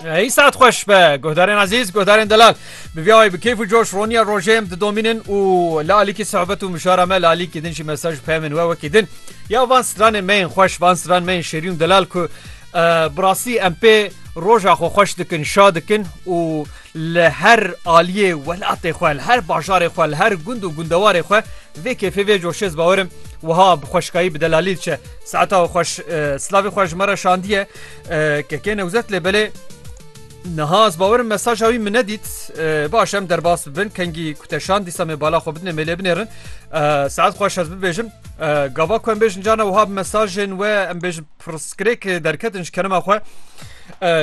Hey saat xweş be guhdarên ezîz guhdarên delal bi vî ayê bi kêf û coş roniya rojê em didomînin û li alîkî sohbet û mişara me li alîkî din jî mesaj peymin we wekî din ya van stranên me yên xweş van stran me yên şêrî û delal ku bi rastî em pê roja xwe xweş dikin şa dikin û li her aliyê welatê xwe li her bajarê xwe li her gund û gundewarê xwe vê kêfê vê coşêz bawerim wiha bi xweşkayî bi delalî diçe saeta xweş slavê xwe ji me re şandiye Kekê newzet lê belê Niha ez bawer mesaja wî min nedît baş em derbas bibin kengî kuteşan dîsa me bala xwe bidine mêlê binêrin saet xweş ez bibêjim gava ku em bêjin cana wiha bi mesajên we em bêjin pirskrêk derketin ji kenema xwe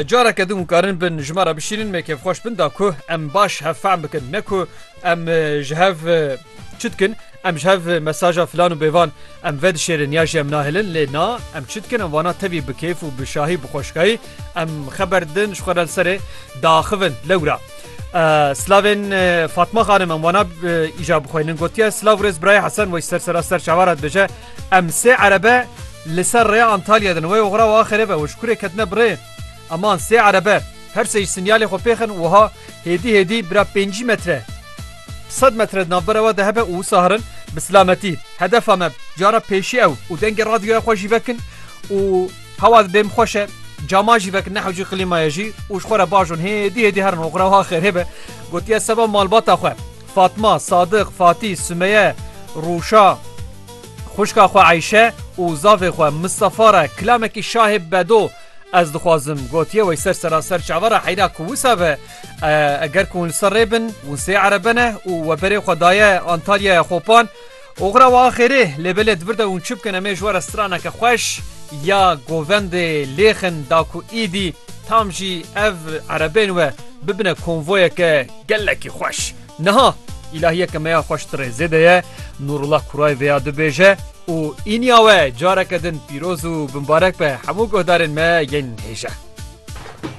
careke din karin bin ji me re bişînin me kêfxweş bin da ku em baş hevfam bikin ne ku em ji hev çi dikin Em ji hev mesaja filan û bêvan em vedişêrin ya jî em nahêlin lê na em çi dikin em wana tevî bi kêf û bi şahî bi xweşikayî em xeber didin ji xwe re li serê diaxivin. Lewra Slavên Fatma Xanim em wana îja bixweynin gotiye Slav rêz birayê Hesen wey ser sera ser çawa re dibêje em sê erebe li ser rêya Antalya din wey oxira wa xerêbe û ji kurê ketine bi rê eman sê erebe her sê jî sinyalê xwe pêxin wiha hêdî hêdî bira pêncî metre Sed metre di navbera we de hebe û wisa herin bi silametî. Hedefa me cara pêşî ew û dengê radyoya xwe jî vekin û hewa di bêm xweş e cama jî vekin ne hewcî qlîmaya jî û ji xwe re bajon hêdî hêdî herin oxira wiha xêr hêbe gotiye seba malbata xwe Fatma, Sadiq, Fatî, Sumeye, Rûşa, xwişka xwe Eyşe û zavê xwe Mistefa re kilamekî şahê bedo ez dixwazim gotiye wey ser seraser çavara heyra ku wisa be Eger ku hûn li ser rê bin, hûn sê erebe ne û we berê xwe daye Antalyaya Xopan. Oxira we axêrê lê belê di vir de hûn çi bikin em ê ji we re straneke xweş ya govendê lêxin da ku îdî tam jî ev erebên we bibine konvoyeke gelekî xweş. Niha îlahiyeke me ya xweş tirê zêde ye Nûrullah Kuray vêya dibêje û îniya we careke din pîroz û bimbarek be hemû guhdarên me yên hêja.